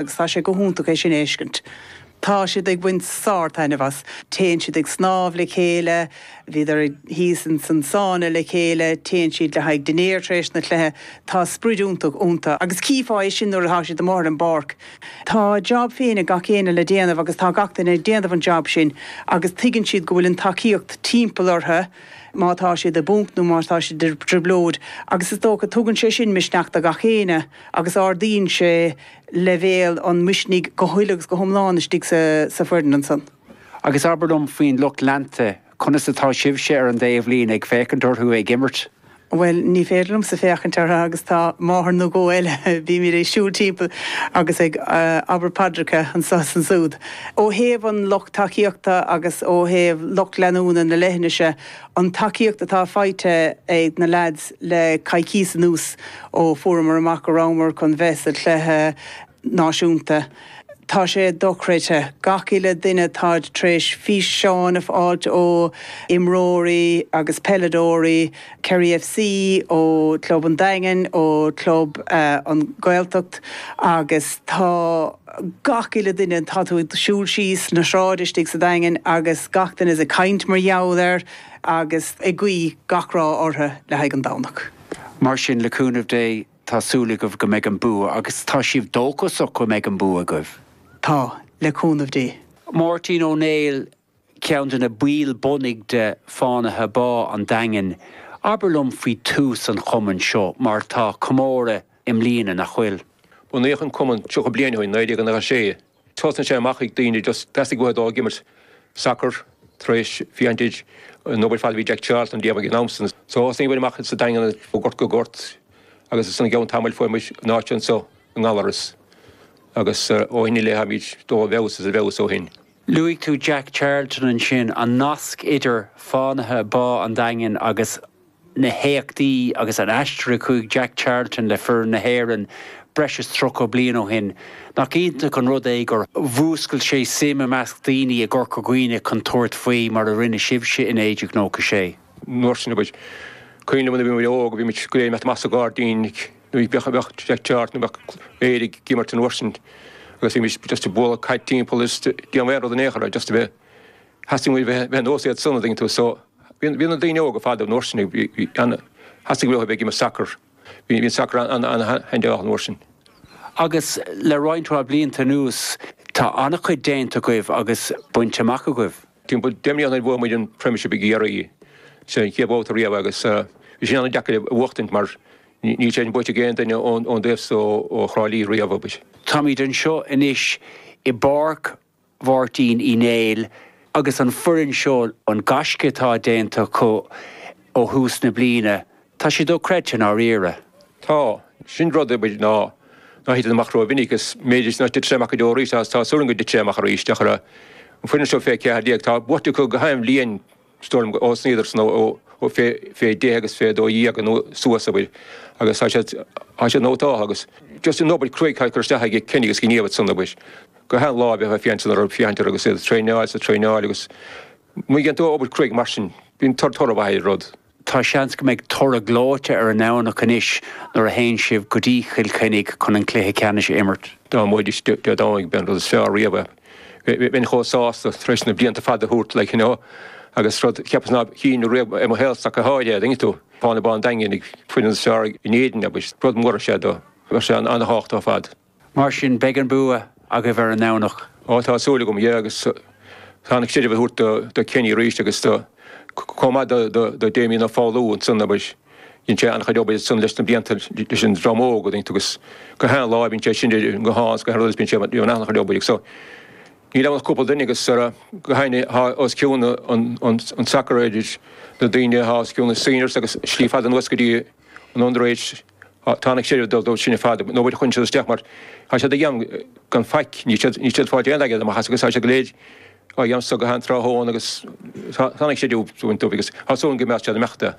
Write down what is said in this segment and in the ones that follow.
agus tá sé go hiontach é sin a fheiscint. Tá siad ag baint sár-taitneamh as. Téann siad ag snámh le chéile, bhíodar thíos ins an sána le chéile, téann siad le haghaidh dinnéir tar éis na gcluichí. Tá sprid iontach ionta agus chífeá é sin nuair atá siad amuigh ar an bpáirc. Tá a jab féin ag gach éinne le déanamh agus tá gach duine ag déanamh an jab sin agus tuigeann siad go bhfuil an tacaíocht timpeall orthu má tá siad i bponc nó má tá siad i dtrioblóid agus is dócha tugann sé sin misneach do gach éinne. agus ardaíonn sé leibhéal an mhisnigh go huile agus go hiomlán istigh sa foireann ansan. Agus abair liom faoin lucht leanta, conas atá sibhse ar an dtaobhlíne ag féachaint orthu ag imirt? Bhuel, ní féidir liomsa féachaint orthu agus tá máthair nó dhó eile, bímid ag siúl timpeall agus ag abairt paidreacha anso is ansúd. Ó thaobh an lucht tacaíochta agus ó thaobh lucht leanúna na leithinise, an tacaíocht atá faighte ag na leaids le coicíos anuas ó fuaireamar amach go rabhamar chun bheith sa chluiche náisiúnta. Tá sé dochreidte. Gach uile duine, táid tar éis físeáin a fháilt ó imreoirí agus peileadóirí Kerry FC, ó Club an Daingin, ó Club na Gaeltachta agus tá. gach uile duine, tá tú ag siúl síos na sráide istigh sa Daingean agus gach duine ag caint mar gheall air agus ag guí gach rath orthu le haghaidh an Domhnach. Mar sin, le cúnamh Dé, tá súil agaibh go mbeidh an bua agus tá sibh dóchasach go mbeidh an bua agaibh? Tá, le cúnamh Dé. Máirtín Ó Néill, ceann de na baill bunaidh de Fánaithe Bá an Daingin, abair liom faoi tús an chumainn seo, mar tá comóradh i mbliana, nach bhfuil? Bunaíodh an cumann tríocha bliain ó shin, 1996. Thosnaigh sé amach ag daoine just, theastaigh uathu dul ag imirt sacar tar éis bhí an t-ád, an obair ar fad a bhí Jack Charlton a dhéanamh ag an am san. So thosaigh muid amach sa Daingean ó gort go gort agus ansan i gceann tamaill fuair muid an áit anso i nGallarus agus ó shin i leith táimid ag dul i bhfeabhas is i bhfeabhas ó shin. Luaigh tú Jack Charlton ansin, an nasc idir Fánaithe Bá an Daingin agus na héachtaí agus an aistear a chuaigh Jack Charlton le foireann na hÉireann breis is tríocha bliain ó shin. Nach iontach an rud é gur mhúscail sé suim i measc daoine i gCorca Dhuibhne chun tabhairt faoi, mar a rinne sibhse i 1996? An uair sin againn. Cuimhin liom nuair a bhí muid óg, bhí muid go léir ag imeacht amach sa ghairdín ag. Nuair a bheadh leath-am ann nó bheadh Éire ag imirt an uair sin agus bheimis just ag bualadh caid timpeall is ag déanamh aon rud in aon chor, just a bheith, theastaigh uainn a bheith ar nós iad san, an dtuigeann tú. So, bhí, bhí na daoine óga fadó an uair sin, bhí, bhí an, theastaigh uathu a bheith ag imirt sacar, bhí, bhí an sacar an-handy an uair sin. Agus le roinnt mhaith blianta anuas, tá an-chuid déanta agaibh agus bainte amach agaibh. Timpeall deich mbliana ó bhuaigh muid an Premiership i gCiarraí sa chéad bhabhta riamh agus bhí sé an-deacair é a bhuachtaint mar níl sé sin buaite ag aon duine ón dtaobh so ó Thrá Lí riamh. Táimid anseo anois i bPáirc Mháirtín Uí Néill agus an foireann seo, an gaisce atá déanta acu ó thús na bliana, Tá sé dochreidte i ndáiríre. Tá. Sin rud ar bith ná titeann amach ró-mhinic. Is m'fhéidir nach dtitfidh sé amach go deo arís, ach tá súil agam go dtitfidh sé amach arís. Féach ar an foireann seo fé 14. Tá buaite acu go hainm líon stoirm ó thosnaigh iadsan ó fé 10 agus fé 12 nó suas sa mhaoil agus tá siad tá siad nó tá agus just an obair cruaidh atá curtha isteach ag Kenny agus gníomh at san obair go hain láimhe atá féansean orthu féachaint orthu agus iad traenáil sa traenáil agus má dhéann tú obair cruaidh mar sin bíonn tor toradh mhaith ar rud. Tá seans go mbeidh toradh gleoite ar an Domhnach anois nuair a théann sibh go dtí Chill Chainnigh chun an cluiche ceannais a imirt. Dá mbuaimis Dé Domhnaigh, b'é an rud is fearr riamh é. Bheinn chomh sásta tar éis na blianta fada a thabhairt laig, you know, agus rud, cheapas ná cífinn riamh i mo shaol sacar thall é, dtuigeann tú. Fánaithe Bhá an Daingin an foireann is fearr in Éirinn, agus rud mór is ea do. Bheadh sé an-tábhachtach ar fad. Mar sin, beidh an bua agaibh ar an nDomhnach. Á, tá súil agam, yeah, agus tá an chreidiúint a thabhairt do Kenny arís agus do, comh maith do, do, do Damien Ó Foghlú ansan, abair, dhein sé an-chuid obair ansan leis na blianta leis an dream óg dtuigeann tú agus go shean lá bíonn sé sin, go hans, go hard bíonn sé, bíonn an-chuid obair ag so, níl ann ach cúpla duine agus sara, go sheine, tá os cionn an, an, an sacar idir na daoine, tá os cionn na seniors agus slí fada anuas go dtí an under age. Tá an-chreidiúint ag dul dóibh sin ar fad, nó bhuel, chuaigh siad isteach mar tá siad ag dhéanamh gan faic, níl siad, níl siad ag fáil aon airgead amach as agus tá siad go léir á dhéanamh so gach aon tráthnóna agus thá, tá an-chreidiúint ag dul dóibh agus tá súil agam go mbeadh siad imeacht de.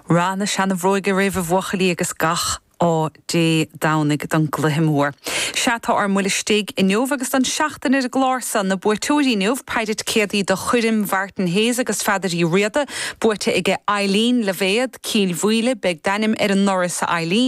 Rath na seana-bhróige oraibh a bhuachaillí agus gach ádh Dé Domhnaigh don gcluiche mór. Sea, tá ár mbuille istigh inniu agus don seachtain ar an gclár so. Na buaiteoirí inniu, péire ticéadaí do choirm Mhartin Hayes agus Pheadair Uí Riada, buaite aige Eileen Luibhéad, Cill Mhaoile, beidh d'ainm ar an ndoras a Eileen,